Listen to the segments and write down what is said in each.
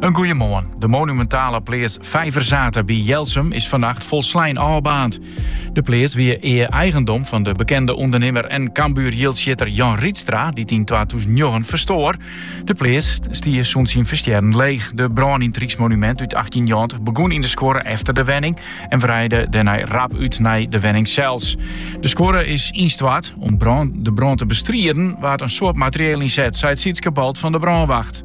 In goeiemoarn. De monumentale pleats Vijverzathe by Jelsum is fannacht folslein ôfbaarnd. De pleats wie ea eigendom fan de bekende ûndernimmer en Cambuur-jildsjitter Jan Riedstra, dy't yn twatûzennjoggen ferstoar. De pleats stie sûnt syn ferstjerren leech. De brân yn it ryksmonumint út achttjinhûnderttachtig begûn yn de skuorre efter de wenning en wreide dêrnei rap út nei de wenning sels. De skuorre is ynstoart. Om de brân te bestriden waard in soad materieel ynset, seit Sytske Balt fan de brânwacht.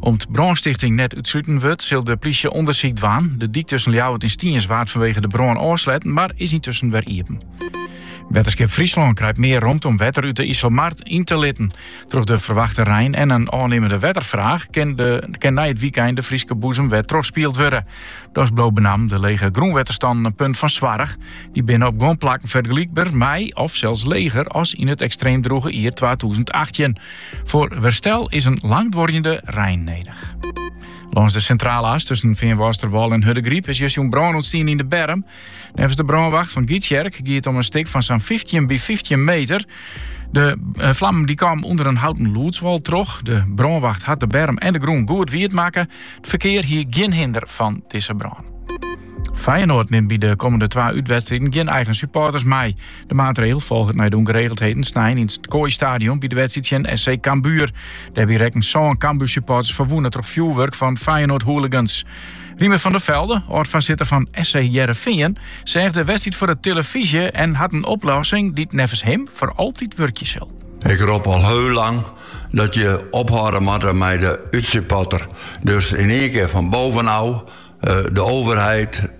Om't brânstichting net útsluten wurdt, sil de plysje ûndersyk dwaan. De dyk tusken Ljouwert en Stiens waard fanwege de brân ôfsletten, mar is yntusken wer iepen. Wetterskip Fryslân krijt mear romte om wetter út de Iselmar yn te litten. Troch de ferwachte rein en in ôfnimmende wetterfraach kin, de, kin nei it wykein de Fryske boezem wer trochspield wurde. Dochs bliuwe benammen de lege grûnwetterstannen in punt fan soarch. Die binne op guon plakken fergelykber mei, of sels leger, as yn it ekstreem droege jier 2018. Foar herstel is in langduorjende rein nedich. Lâns de Sintrale As tusken Feanwâlsterwâl en Hurdegaryp is justjûn brân ûntstien yn de berm. Neffens de brânwacht fan Gytsjerk gie it om in stik fan sa'n fyftjin by fyftjin meter. De eh, flammen dy kamen ûnder in houten lûdswal troch. De brânwacht hat de berm en de grûn goed wiet makke. It ferkear hie gjin hinder fan dizze brân. Feyenoord nimt by de kommende twa útwedstriden gjin eigen supporters mei. De maatregel folget nei de ûngeregeldheden snein yn it Kooistadion by de wedstriid tsjin SC Cambuur. Dêrby rekken sân Cambuur-supporters ferwûne troch fjoerwurk fan Feyenoord-hooligans. Riemer van der Velde, âld-foarsitter fan SC Hearrenfean, seach de wedstriid foar de tillefyzje en hat in oplossing dy't neffens him foar altyd wurkje sil. Ik rop al hiel lang dat je ophâlde moatte mei de útsupporter. Dus yn ien kear fan boven ôf, eh, de overheid,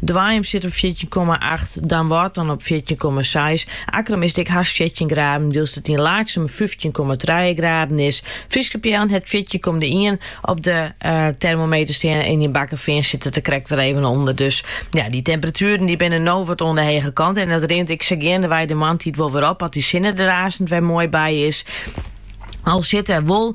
Doanjum sit op fjirtjin komma acht, Damwâld dan op fjirtjin komma seis, Akkrum is dik hast fjirtjin graden, wylst it yn Laaksum fyftjin komma trije graden is. Fryske Peallen hat fjirtjin komma ien op de termometer stean en yn Bakkefean sit it der krekt wer even ûnder. Dus ja, dy temperatueren dy binne no wat oan de hege kant en dat rint ek sa geandewei de moarntiid wol wer op as dy sinne der aansen wer moai by is. Al sit der wol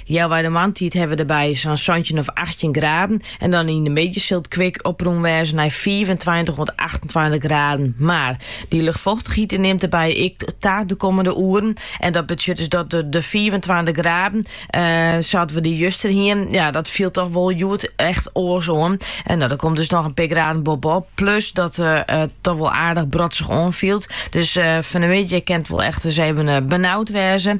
Healwei de moarntiid hawwe we der by sa'n santjin of achttjin graden en dan yn de middei sil it kwik oprûn wêze nei fiifentweintich oant achtentweintich graden. Mar, dy luchtfochtichheid nimt dêrby ek ta de kommende oeren en dat betsjut dus dat de fiifentweintich graden sa't we juster hienen, ja, dat fielt toch wol hjoed echt oars oan. No, der komt dus noch in pear graden boppe-op, plus dat it toch wol aardich brodzich oanfielt. Dus fan de middei kin it wol echt ris even benaud wêze.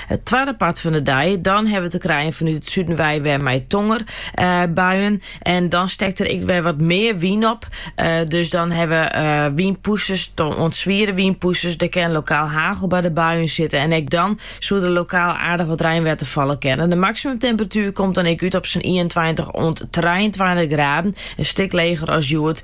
It twadde part fan de dei, dan hawwe we te krijen fanút it suden wei wer mei tongerbuien. Eh, en dan stekt der ek wer wat mear wyn op. Eh, dus dan hawwe we eh, wynpûsters, oant swiere wynpûsters. Der kin lokaal hagel by de buien sitte. En ek dan soe der lokaal aardich wat reinwetter falle kinne. De maksimumtemperatuer komt dan ek út op sa'n 21 oant 23 graden. In stik leger as hjoed.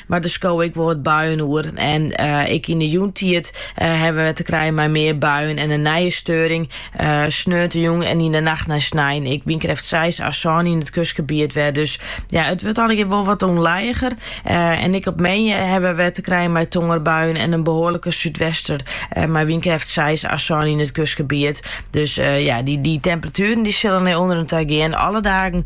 Mar der skowe ek wol wat buien oer. En ek yn 'e jûntiid hawwe we te krijen mei mear buien en in nije steuring. Sneontejûn en yn 'e nacht nei snein ek wynkrêft seis à sân yn it kustgebiet wer. Dus ja, it wurdt allegear wol wat ûnlijiger. En ek op moandei hawwe we te krijen mei tongerbuien en in behoarlike súdwester mei wynkrêft seis à sân yn it kustgebiet. Dus ja, dy temperatueren dy sille nei ûnderen ta gean. Alle dagen